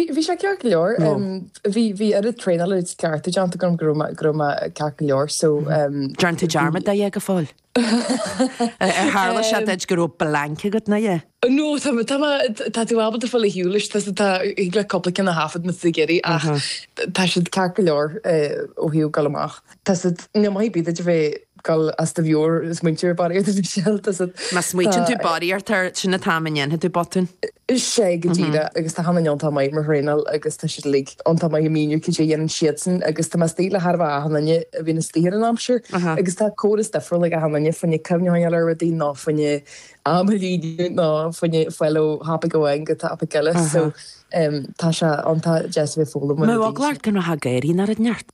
Bhí sé ceart go leor. Bhí oiread traenála agus cleachtaí déanta agam go raibh go raibh mé ceart go leor so ní dhearn tú dearmad de a dhath go fóill. Ar tharla sé duit go raibh blank agat ná a dhath? No, tá mé tá mé tá tú ábalta ghabháil ar shiúl leis tusa tá thig leat cúpla ceann a thaifead na sa gcéirí ach tá siad ceart go leor ó thaobh dul amach. Tá siad, no maith bíd idir bheith Gan tú a bheith ag smaointiú barraíocht air do shell tá sa. Má smaoitíonn tú barraíocht air, sin an t-am a ndéanfaidh tú botún. Is é go díreach agus tá achan duine iontach maith ag mo thraenáil agus tá siad uilig iontach maith ag míniú cad é a dhéanann siadsan agus tá mé istigh le chóir a bheith achan duine a bhíonn istigh ar an aimsir agus tá córas difriúil ag achan duine fá choinne cuimhneáil ar rudaí nó fá choinne é a mhíniú nó fá choinne ghabháil ó thopaic amháin go topaic eile so tá sé iontach deas a bheith ag foghlaim mar a bhíonn sé. Mo bhog leart go raibh thá ag éirí ná raibh neart.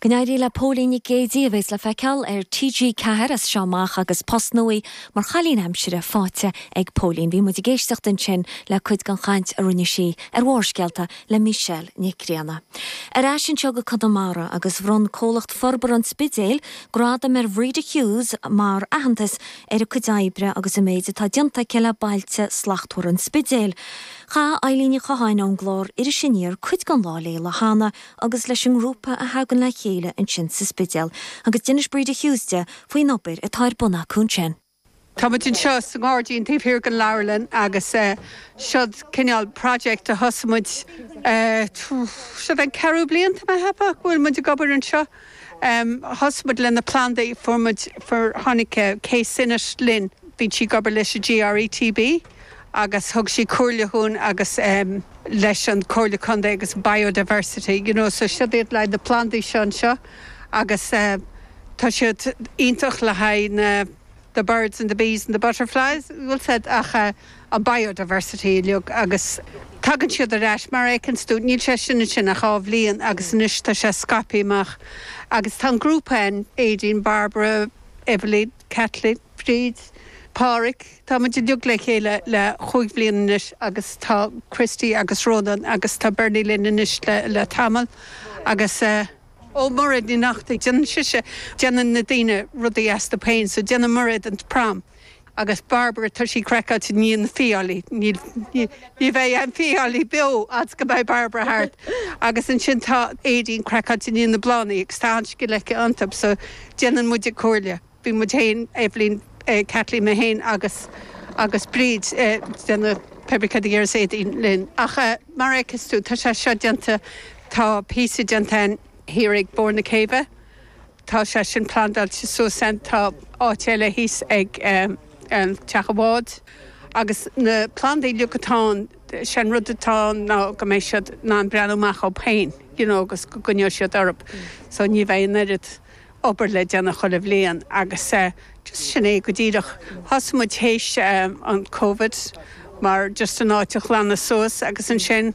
Go n-éirí le Póilín Nic Géidigh a bheas le feiceáil ar TG4 as seo amach agus post nua mar chailín aimsire faighte ag Póilín. Bhí muid ag éisteacht ansin le cuid den chaint a rinne sí ar Bharrscéalta le Michelle Nic Grianna. Ar ais anseo go Conamara agus bhronn Comhlacht Forbartha an Spidéil gradam ar Bhreda Hughes mar aitheantas ar a cuid oibre agus an méid atá déanta aici le Bailte Slachtmhara an Spidéil. Chaith Eileen Ní Chatháin ón gclár Iris Aniar cuid den lá léi an lá cheana agus leis an ngrúpa a thagann le chéile ansin sa Spidéal agus d'inis Breda Hughes di faoin obair atá ar bun acu ansin. Tá muid anseo sa ngairdín taobh thiar den leabharlann agus siod cineál project a thosaigh muid, siod an ceathrú bliain, tá mé a cheapadh, go bhfuil muid ag obair anseo. Thosaigh muid le na plandaí, fuair muid, fuair, tháinig Kay Synott linn, bhíonn sí ag obair leis an GRETB agus thug sí comhairle dhúinn agus leis an Comhairle Contae agus Biodiversity, you know, so siod iad le haghaidh na plandaí seo anseo agus tá siad iontach le haghaidh na the birds and the bees and the butterflies bhuel siod ach an biodiversity uilig agus tagann siad ar ais mar a fheiceanns tú níl sé sin ansin ach dhá bhliain agus anois tá sé scaipthe amach agus tá an grúpa ann Aedín, Barbara, Eveleen, Kathleen, Bríd, Páraic tá muid uilig le chéile le chúig bhliana anois agus tá Christy agus Rónán agus tá Bernie linn anois le tamall agus eh. Ó Mairéad Ní Neachtain, déanann sise, déanann na daoine rudaí astu féin, so déanann Mairéad an prom agus Barbara tá sí craiceáilte i ndiaidh na fiailí, níl, ní bheidh aon fiailí beo fhad 's go mbeidh Barbara thart agus ansin tá Aedín craiceáilte i ndiaidh na bláthannaí agus tá an-scil aici iontub so déanann muid a comhairle. bhí muid féin, Eibhlín, Caitlín mé féin agus Bríd ag déanamh Pébrí Cad a dhéarfas Éadaoin linn? Ach mar a fheiceas tú, tá sé seo déanta, tá píosa déanta thiar ag barr na céibhe, tá sé sin plandáilte suas ann, tá áit eile thíos ag an teach an bháid agus na plandaí uilig atá ann, sé an rud atá ann ná go mbeidh siad in ann breathnú amach orthu féin, you know, agus go gcoinneoidh siad orthu, so ní bheidh an oiread. obair le déanamh chuile bhliain agus just sin é go díreach. Thosaigh muid théis an Covid mar just an áit a ghlanadh suas agus ansin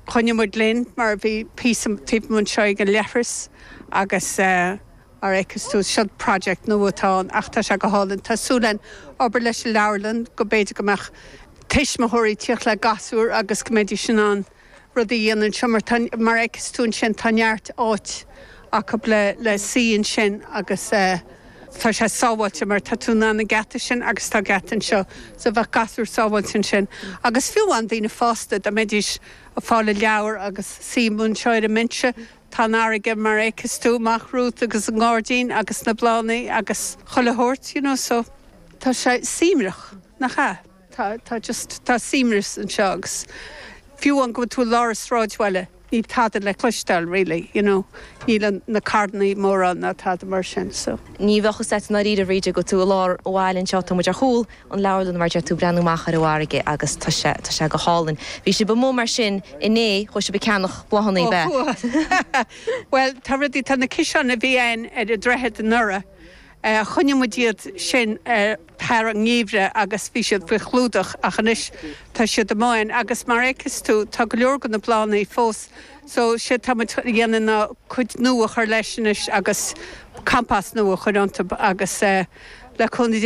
choinnigh muid linn mar bhí píosa taobh amuigh anseo ag an leithreas agus mar a fheiceas tú seo, seo project nua atá ann ach tá sé go hálainn. Tá súil againn obair leis an leabharlann go mb'fhéidir go mbeadh tuismitheoirí ag tíocht le gasúir agus go mbeidís in ann. rudaí a dhéanamh anseo mar tá, mar a fheiceas tú ansin, tá neart áit acu le suí ansin agus tá sé sábháilte mar tá tú in ann an geata sin agus tá geata anseo so bheadh gasúir sábháilte ansin agus fiú amháin daoine fásta dá mbeidís ag fáil leabhar agus suí amuigh anseo ar an mbinse. Tá an fharraige mar a fheiceas tú amach romhat agus an gairdín agus na bláthanna agus chuile shórt you know so tá sé suaimhneach, nach ea? tá, tá just, tá suaimhneas anseo agus fiú amháin go bhfuil tú i lár an sráidbhaile níl tada le cloisteáil really, you know, níl an, na carranna mórán ná tada mar sin so. ní bheadh fhios agat i ndáiríre a Bhríd go bhfuil tú i lár an bhaile anseo tá muid ar chúl an leabharlann mar a fheiceas tú ag breathnú amach ar an bhfarraige agus tá sé, tá sé go hálainn. Bhí sibh amuigh mar sin inné, chuaigh sibh ag ceannach bláthanna ab ea? chuaigh, bhuel tá rudaí, tá na ciseáin a bhí a'inn ar an droichead anuraidh, eh, choinnigh muid iad sin ar, thar an ngeimhreadh agus bhí siad faoi chlúdach ach anois tá siad amuigh agus mar fheiceas tú tá go leor de na plandaí fós so séard tá muid a dhéanamh ná cuid nua a chur leis anois agus compost nua a chur iontu agus le cúnamh Dé